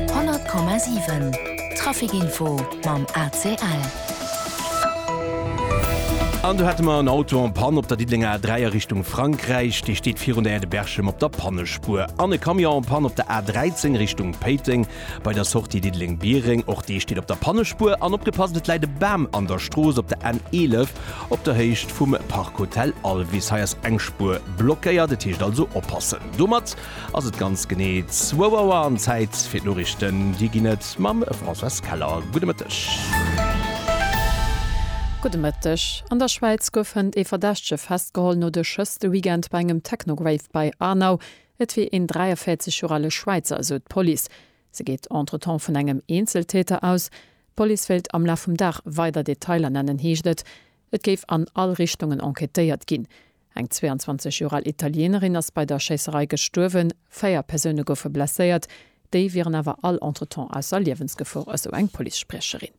100,7 Trafic-Info mam ACL. An do hate mer en Auto en Panne op der Diddelenger A3 a Richtung Frankräich. Dee steet virun der Aire de Berchem op der Pannespuer. An e Camion en Panne op der A13 Richtung Péiteng bei der Sortie Diddeleng-Biereng. Och dee steet op der Pannespuer. An opgepasst, et läit e Bam an der Strooss op der N11 op der Héicht vum Parc Hotel Alvis. Hei ass eng Spuer blockéiert, et heescht also oppassen. Domat. Ass et ganz genee zwou Auer an Zäit fir d'Noriichten. Déi ginn et mam Françoise Keller. Gudde Mëtteg. Gudde Mëtteg. An der Schwäiz gouf hënt ee Verdächtege festgeholl no de Schëss de Weekend bei engem Techno-Rave bei Aarnau. Et wier een 43 Joer ale Schwäizer, esou d'Police. Se geet entretemps vun engem Eenzeltäter aus. D'Police wéilt am Laf vum Dag weider Detailer nennen, heescht et. Et géif an all Richtungen enquêtéiert ginn. Eng 22 Joer al Italienerin ass bei der Schéisserei gestuerwen, véier Persoune goufe blesséiert, déi wieren awer all entretemps ausser Liewensgefor, esou eng Policespriecherin.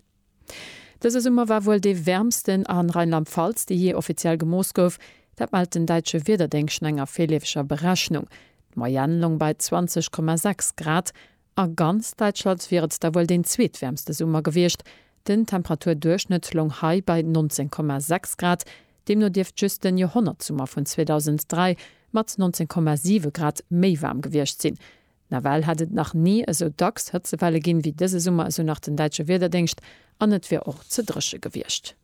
Dëse Summer war wuel dee wäermsten a Rheinland-Pfalz, dee jee offiziell gemooss gouf. Dat mellt den däitsche Wiederdéngscht no enger virleefeger Berechnung. D'Moyenne loung bei 20,6 Grad. A ganz Däitschland wier et da wuel deen zweetwäermste Summer gewiescht. Den Temperaturduerchschnëtt loung hei bei 19,6 Grad. Deemno dierft just den Joerhonnertsummer vun 2003 mat 19,7 Grad méi waarm gewiescht sinn. Nawell hätt et nach ni esou dacks Hëtzewelle ginn, wéi dëse Summer, esou nach den däitsche Wiederdéngscht, an et wier och ze dréche gewiescht.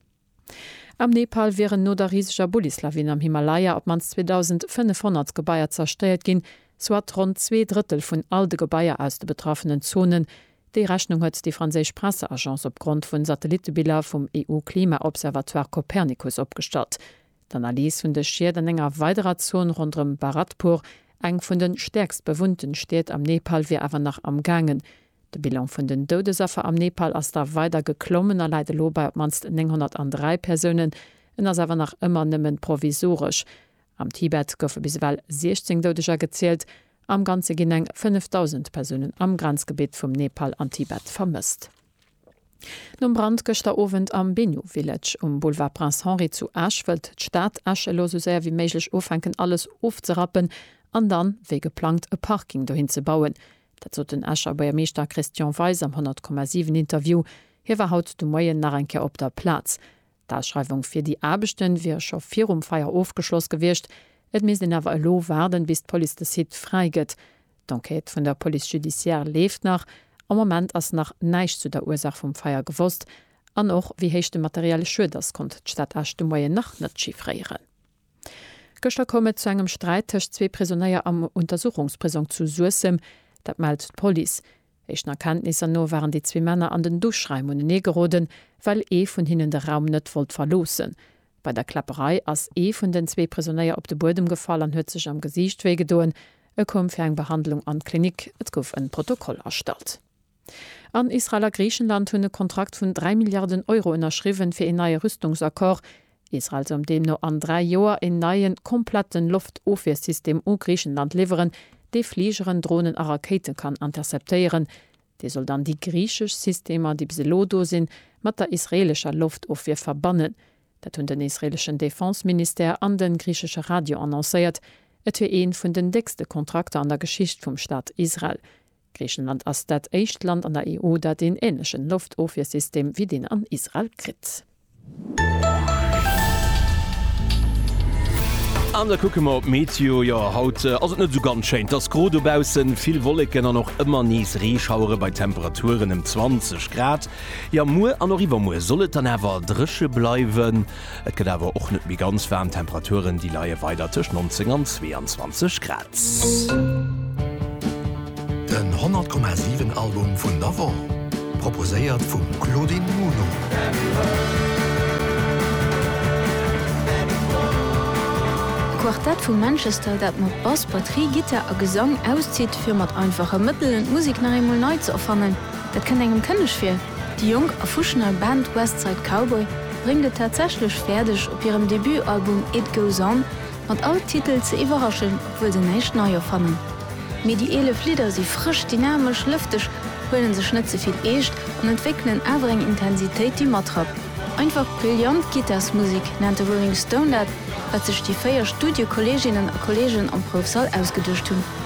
Am Nepal wieren no der riseger Bullislawin am Himalaya op d'mannst 2.500 Gebaier zerstéiert ginn, soit ronn zwee Drëttel vun all de Gebaier aus de betraffenen Zonen. Déi Rechnung huet déi franséisch Presseagence opgrond vu Satellittebiller vum EU-Klima-Observatoire Copernicus opgestallt. D'Analys vun de Schied an enger weiderer Zon ronderëm Bharatpur, eng vun de stäerkst bewunnten Stied am Nepal, wier awer nach amgaangen. De Bilan vun den Doudesaffer am Nepal ass da weider geklommen a läit elo bei op d'mannst 903 Persounen. En ass awer nach ëmmer nëmmen provisoresch. Am Tibet goufe bis ewell 16 Doudeger gezielt. Am Ganze ginn eng 5.000 Persounen am Grenzgebitt vum Nepal an Tibet vermësst. Nom Brand gëschter Owend am Binu Village um Boulevard Prince Henri zu Esch, wëllt d'Stad Esch elo sou séier wéi méiglech ufänken alles ofzerappen an dann, wéi geplangt, e Parking dohin ze bauen. Dat sot den Escher Buergermeeschter Christian Weis am 100,7 Interview. Hie war haut de Moien nach eng Kéier op der Plaz. D'Ausschreiwung fir déi Aarbechte wier scho virum Feier ofgeschloss gewiescht. Et misst een awer elo waarden, bis d'Police de Site fräi gëtt. D'Enquête vun der Police judiciaire leeft nach. Am Moment ass nach näischt zu der Ursaach vum Feier gewosst. An och wéi héich de materielle Schued ass, konnt d'Stad Esch de Moien nach net chiffréieren. Gëschter koum et zu engem Sträit tëscht zwee Prisonéier am Untersuchungsprisong zu Suessem. Dat mellt d'Police. Éischten Erkenntnisser no waren déi zwee Männer an den Duschraim unenee geroden, well ee vun hinnen de Raum net wollt verloossen. Bei der Kläpperei ass ee vun den zwee Prisonéier op de Buedem gefall an huet sech am Gesiicht wéi gedoen. E koum fir eng Behandlung an d'Klinik. Et gouf en Protokoll erstallt. An Israel a Griichenland hunn e Kontrakt vun 3 Milliarden Euro ënnerschriwwen, fir een neie Rüstungsaccord. Israel soll deemno an dräi Joer een neien, kompletten Loftofwiersystem u Griichenland liwweren, dee Fligeren, Dronen a Rakéite kann interceptéieren. Dee soll dann déi griichesch Systemer, déi bis elo do sinn, mat der israeelescher Loftofwier verbannen. Dat hunn den israeeleschen Defense-Ministère an de griichesche Radio annoncéiert. Et wier ee vun den déckste Kontrakter an der Geschicht vum Staat Israel. Griichenland ass dat éischt Land an der EU, dat een änlechen Loftofwiersystem wéi deen an Israel kritt. An da kucke mer op d'Meteo. Jo, haut ass et net esou ganz schéin. Et ass gro dobaussen, vill Wolleken an och ëmmer nees Reeschauere bei Temperaturen ëm 20 Grad. Jo, muer an och iwwermuer soll et dann awer dréche bleiwen. Et gëtt awer och net méi ganz waarm, d'Temperaturen déi leie weider tëscht 19 an 22 Grad. Den 100 Komma 7 Album vun der Woch proposéiert vum Claudine Muno. E Quartett vu Manchester, dat mat Bass, Batterie, Gittar a Gesang auszitt, fir mat einfache Mëttelen d'Musek nach eemol nei ze erfannen, dat kënnt engem kënneg vir. Déi jonk a fuschnei Band West Side Cowboy bréngt et tatsächlech fäerdeg, op hirem Debutalbum It Goes On mat all Titel ze iwwerraschen, obwuel se näischt nei erfannen. Mee déi 11 Lidder si frësch, dynamesch, lëfteg, huele sech net ze vill eescht an entwéckelen awer eng Intensitéit, déi matrappt. Einfach brillant Gittarsmusek nennt de Rolling Stone dat, wat sech déi véier Studiokolleeginnen a kolleegen am Proufsall ausgeduecht hunn.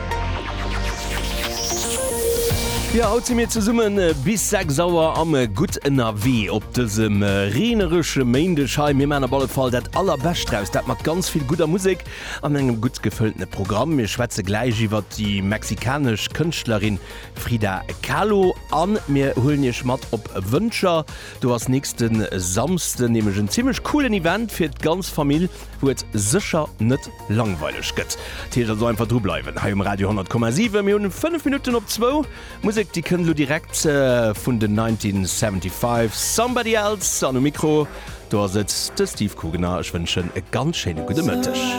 Jo, haut si mir zesumme bis 6 Auer am Gutt ënnerwee op dësem reeneresche Méindeg hei. Mir maan op alle Fall dat Allerbescht draus, dat mat ganz vill gudder Musek an engem gutt gefëltene Programm. Mir schwätze gläich iwwert déi mexikanesch Kënschtlerin Frida Kahlo a mir huelen Iech mat op Wëncher. Do ass nächste Samsden nämlech en zimmlech coolen Event fir d'ganz Famill. wou et sécher net langweileg gëtt. Dat heescht also einfach dru bleiwen hei um Radio 100,7. Mir hunn 5 Minutten op zwou. Musek déi kënnt elo direkt vun den 1975, Somebody Else. An um Mikro do ass et de Steve Kugener. Ech wënschen e ganz schéine gudde Mëtteg.